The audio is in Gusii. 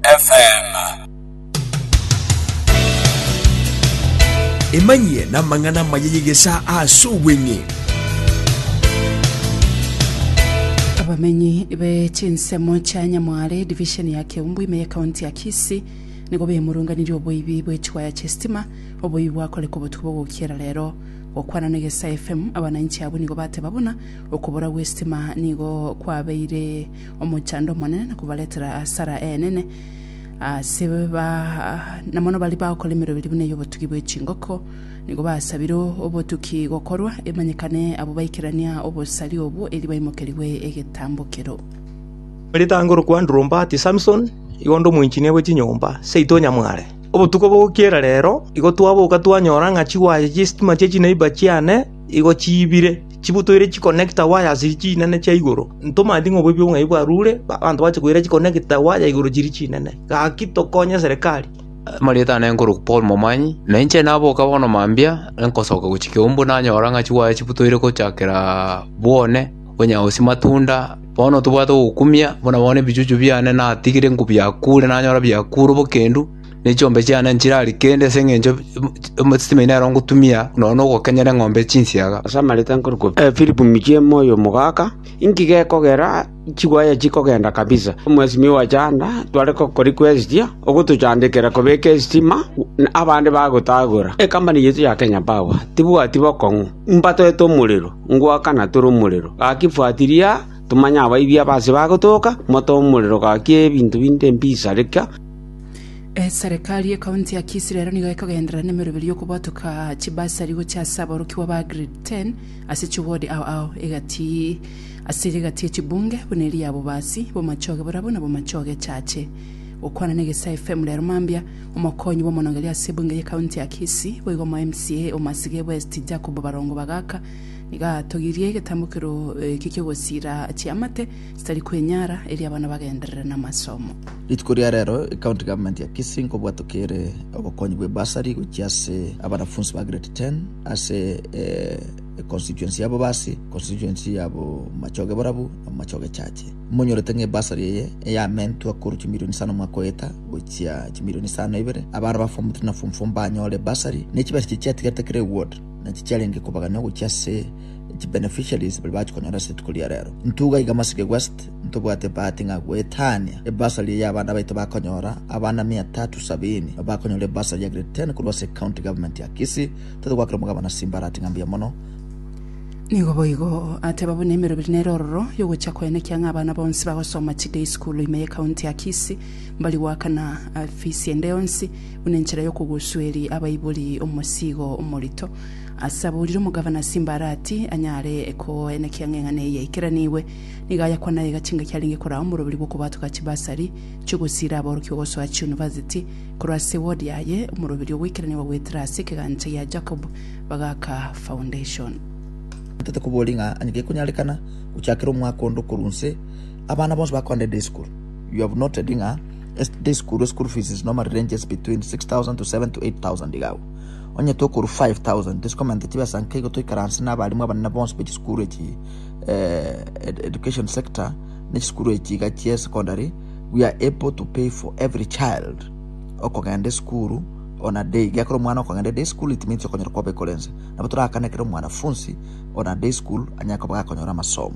FM. Emanyie namang'ana amaya y'egesaa ase obweng'e. Abamenyi be chinsemo chia Nyamware division ya Keumbu ime ye county ya Kisii nigo bemurunganirie oboibi bwe chiwaya chie sitima oboibi bwakoreka obotuko bogokiera rero. Gokwana na Egesaa FM abananchi abwo nigo bateba buna okobora gwe sitima nigo kwabeire omochando omonene na kobaretera asara enene ase ba na mono baria bagokora emerero eria buna ey'obotugi bwe chingoko nigo basabire obotuki gokorwa emanyekane abwo baikerania obosari obwo erio baimokerigwe egetambokero. Ritango rokwandiromba ati Samson igo onde omoinchinia bwe chinyomba seito onyamware. Obotuko bogokiera rero igo twaboka twanyora ng'a chigwaye chi'esitima chie chineiba chiane Igo chiibire, chibutoire chikonekta waya ase chinene chia igoro. Ntomanyeti ng'a oboibi obong'ai bwarure, abanto bache koira chikonekta waya igoro chiria chinene. Gaki tokonye serikali. Amarieta aane nkorokwa Paul Momanyi, na inche naboka bono mambia, nkosoka gochia Kiambu nanyora ng'a chiwaya chibutoire gochakera bwone, onye gose matunda. Bono tobwate ogokumia, buna bono ebichuchu biane natigire nkobiakure, nanyora biakure bokendu. ne chiombe chiane nchirari kende ase engencho y'omosisimi oino nero ngotumia nonya nogokenyera eng'ombe chinsiaga. Abasamarita nkorokwa Philip Michie moyo omogaka, inki gekogera chigwaya chikogenda kabisa? Omosisimi owe chanda tware gokori kwestia, ogotochandekera kobeka esitima, abande bagotagora. Ecompany yaito ya Kenya Power tibwati bokong'u, mbatoete omorero, ngoakana tore omorero. Gaki fuatiria tomanye abaibia abase bagotoka, mote omorero gaki ebinto binde mbisareka. Eserekari y'ekaunti ya Kisii rero nigo ekogenderera nemeroberio y'okobotoka chibasari gochia ase aborokigwa ba grade 10 ase chiwodi ao ao egati ase iga egati ye chibunge buna eria ya Bobasi, Bomachoge Borabu na Bomachoge Echache. Gokwana na Egesae FM rero mambia, omokonyi bw'omonongeria ase ebunge y'ekaunti ya Kisii boigo omo MCA o Masige West Jacob Barongo Bagaka nigo atogirie egetambo keroo eki ki'ogosiira chiamate Chitari kwenyara erio abana bagenderere namasomo. Rituko ria rero ecounty government ya Kisii nkobwatokere obokonyi bwe bursary gochia ase abanafunsi ba grade 10 ase e constituency ya Bobasi, constituency ya Bomachoge Borabu na Bomachoge Chache. Monyorete ng'a ebursary eye eyamentwa korwa chimilioni isano omwaka oeta gochia chimilioni isano ibere, abana ba form 3 na form 4 mbanyore bursary, ne chibesa echi chiatigarete kera eward nachi chiarenge kobaganywa gochia ase chi beneficiaries baria bachikonyora ase rituko ria rero. Intwe iga iga Masige West ntobwate ebahati ng'a goetania ebasari eye abana baito bakonyora, abana mia tatu sabini bakonyora ebasari ya grade ten korwa ase County Government ya Kisii. Tote goakera omogabana Simbarati ng'a mbuya mono. Nigo boigo ateba buna emeroberi nere ororo yogocha koenekia ng'a abana bonsi bagosoma chi day school ime ye County ya Kisii mbari goakana fees ende yonsi buna enchera yokogusueri abaibori omosigo omorito. Ase aborire omogabana Simbarati anyare koenekea ng'a eng'ana eye yaikeranigwe, nigo ayakwana aye egachenga kiarenge koraa omoroberi bw'okobatuka chibasari chi'ogosiira aborokigwa gosoa chiunivasiti. Korwa ase ewodi yaye, omoroberi o goikeranigwa goetera ase ekegancha gia Jacob bagaaka foundation. Ntaete koboria ng'a onye gekonyarekana gochakera omwaka onde korwa inse, abana bonsi bakoenda eday school. You have noted ng'a eday school school fees is normally ranges between 6000 to 7 to 8000 iga agwo. Onye tokorwa 5000 tisikomenta chibesa nka igo toikaranse na abalimu abanene bonsi be chisukuru echi education sector ne chisukuru echi iga chia secondary we are able to pay for every child okogenda esukuru on a day gekero omwana okogenda day school it means okonyora koba ekorense nabo torakane ekero omwanafunsi on a day school anyare koba gakonyora amasomo